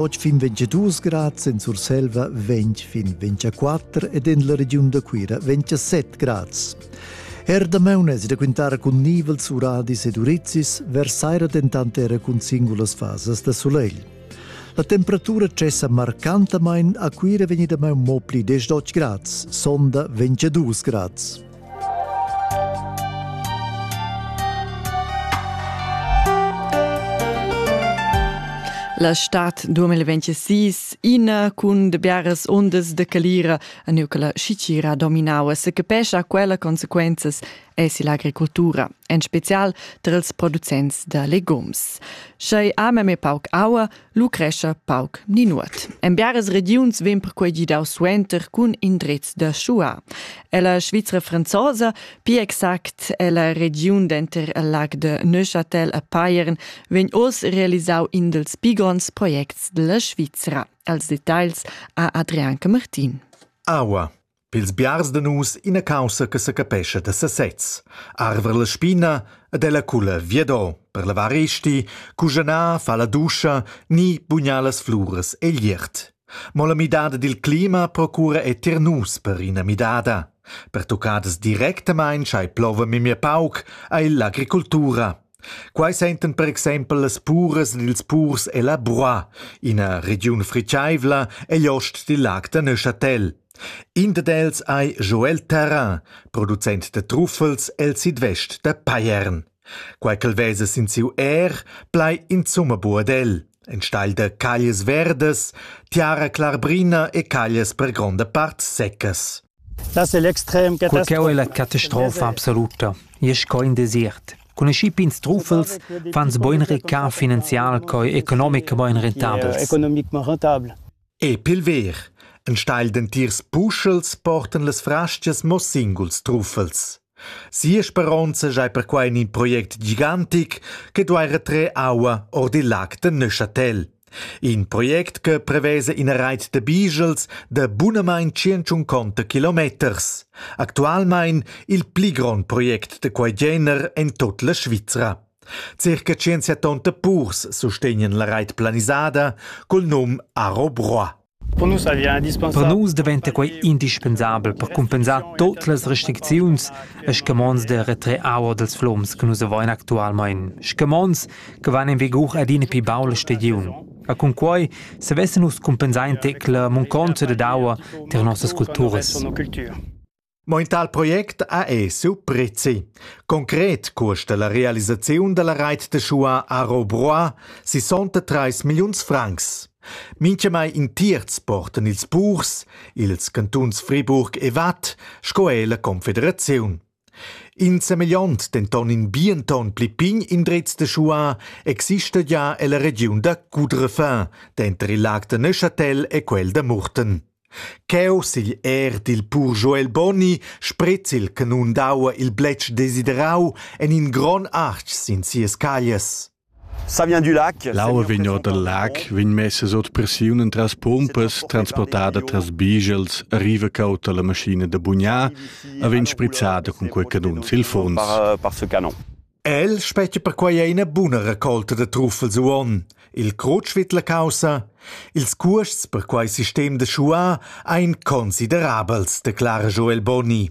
Oggi fin 22 grad, in Surselva 20 fin 24 ed en la regiun da Cuira 27 grads. Er damaun es da quintare cun nivels uradis ed urizis, vers saira dentant era cun singulas fasas da solegl. La temperatura cessa marcantamain a Cuira vegni damaun mo pli 10 grads, sonda 22 grads. La stad 2026 ina cun de biaras ondas de calira a neu che la schicira dominava se capescha quella consequenzas es l'agricoltura, en spezial tra els producents de legumes. Schei ame me pauc aua, lu crescha pauc ni nuot. En biaras regiuns vegn perquei gidau suenter cun indrezs da schuar. Ella Svizra franzosa, pli exact ella regiun denter il lag de Neuchâtel e Payern, vegn oz realisau in dils pi gronds projects dalla Svizra. Als detagls ha Adrian Martin. Aua. Pils biars da nus ina caussa che secapescha da sesez. Arver la spina ed ella culla viado per lavar esti, cugianar, fa la duscha ni bugnar las fluras egl iert. Mo la midada dil clima procura è tier nus per ina midada. Per tuccadas directamain schai plova memia pauc ei l'agricultura. Quai sentan per exempel las puras ed ils purs ella Broa, ina regiun fritgaivla egl ost dil lag da Neuchâtel. In dad els ei Joel Terrain, producent da truffels el sidvest da Payern. Quai ch'el vesa sin siu èr plai insumma buc ad el, enstagl da caglias verdas, tiara clarbrina e caglias per gronda part seccas. Cur ch'eu è la catastrofa absoluta, i es co ün desiert. Cun aschi pigns truffels fans bain recar finanzial co economic bain rentabels. E pilver. Enstagl d'entirs puschels portan las fraschias mo singuls truffels. Sia speronza schai perquai in in project gigantic che duai retrer aua or dil lag da Neuchâtel. In project che prevesa ina reit da bigels da bunamain tschient kilometers. Actualmein il pli grond project da quei gener en tut la Svizra. Circa 170 purs sustegnan la reit planisada cul num Aro Broa. Per nus daventa quei indispensabel per cumpensar tut las restricziuns e scamonds da retrer aua dals flums che nus havein actualmein, scamonds che van en vigur adina pli baul la stagiun. E cun quei savessen nus cumpensar in tec la munconza dad aua tier nossas culturas. Mo in tal project ha esu prezi. Concret cuosta la realisaziun dalla reit de Schua a Robroy 63 milliuns francs. Minchemai in tierz portan ils purs, ils cantuns Friburg e Watt sco er la Confederaziun. In semegliont denton in bienton pli pign indrez de Schua exista ja ella regiun da Coudrefin, denter il lag de Neuchâtel e quel de Murten. Cheu sigl èr dil pur Joel Bonni spret il canun d'aua il bletsch desiderau en in gron artg sin sias caglias. L'aua vegn or dal lag, vegn messas ord pressiun entras pompas, transportada tras bigels, arriva cautta la maschina da bugnar e vegn sprizzada cun quei canun sil funs. El spetga perquai ina buna raccolta da truffels uonn, il crutsch vid la caussa. Ils cuosts per quei sistem da schuar ein considerabels, declara Joel Boni.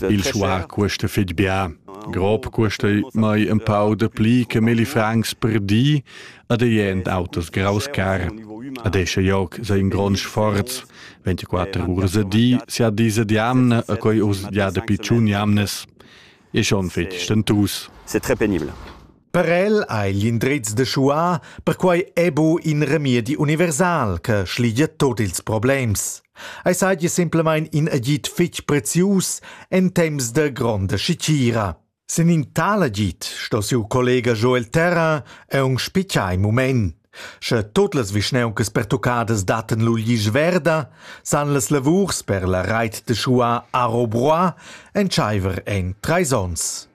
Il schuar cuesta fitg bien. Grob cuesta mai ein pau de pli che milli francs per di ad ein autos graus car. Ad esce joc sei in grond sforz. 24 urs a di, si a dise di anne, a quei urs ja de picciun jamnes. e schon fetg stentus. C'est très pénible. Per el ei l'indriz de schuar perquei ebu in remedi universal che schligia tot ils problems. Ei seigi simplemein in agid fetg prezius en temps de gronda schicira. Sin in tal agid sto siu collega Joel Terra e un spicai mument. Sche tut las vischnauncas pertuccadas dattan lu glisch verda, san las lavurs per la reit da schuar Aro Broa entscheiver en treis onns.